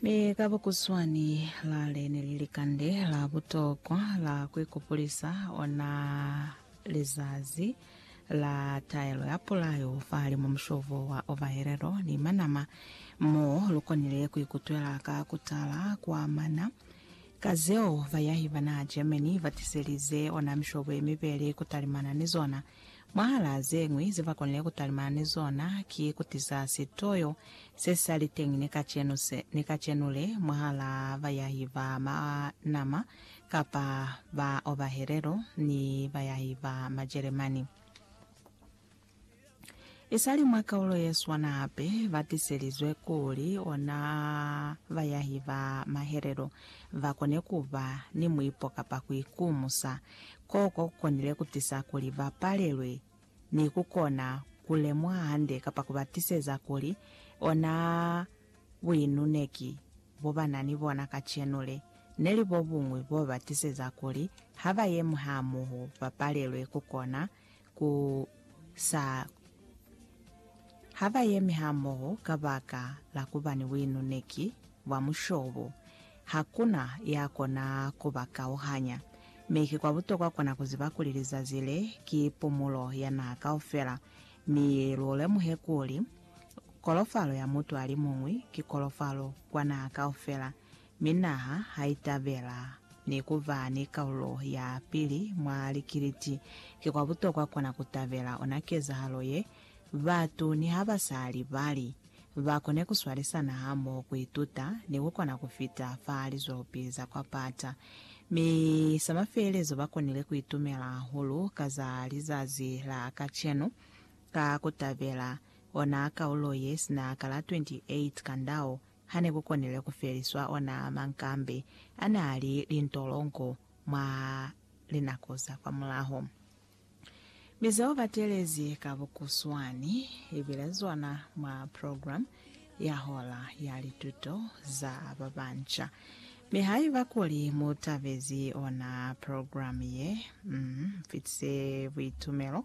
Mi ka bukutshwani, lale ne li likande la butokwa la ku ikupulisa ona lizazi la taelo ya pulayo fahalimu mushobo wa ovahelelo ni manama, mo lu konile ku ikutwela ka ku tala kwa mana. Ka zeo, bayahi bana Germany ba tiselize ona mishobo ye mibeli ku talimana ni zona. Mwahala ze ñwi ze ba konile ku talimana ni zona ki ku tiza sitoyo se sa li teñi ni kacenu se, ni kacenu le, mwahala bayahi ba Manama kapa ba Obahelelo ni bayahi ba Majeremani. Isali mwa kaulo ye swana hape, ba tiselizwe kuli ona bayahi ba Mahelelo ba kone ku ba ni muipo kapa ku ikumusa. Koko ku konile ku tisa kuli ba palelwe ni ku kona ku lemuha hande kapa ku ba tiseza kuli ona buinuneki bo ba na ni bona kacenu le, ne li bo buñwi bo ba tiseza kuli ha ba yemi hamoho ba palelwe ku kona ku sa ha ba yemi hamoho kabaka la kuba ni buinuneki bwa mushobo. Hakuna ya kona ku ba kauhanya. Mi ki kwa butokwa kona ku ziba kuli lizazi le ki pumulo ya naha kaufela, mi lu lemuhe kuli kolofalo ya mutu alimuñwi ki kolofalo kwa naha kaufela. mi naha ha itabela ni ku ba ni kaulo ya pili mwa likiliti. Ki kwa butokwa kona ku tabela ona kezahalo ye, batu niha ba sa libali, ba kone ku swalisana hamoho, ku ituta, ni ku kona ku fita fa lizwelopi za kwa pata. Mi sa mafelelezo ba konile ku itumela hahulu ka za lizazi la kacenu ka ku tabela ona kaulo ye sina ka la 28 Kandao, Ha ne ku konile ku feliswa ona mankambi a n'a li lintolongo mwa linako za kwamulaho, mi ze u batelezi ka bukuswani li bile zona mwa program ya hora ya lituto za ba banca. Mi haiba kuli mu tabezi ona program ye, m'fitise buitumelo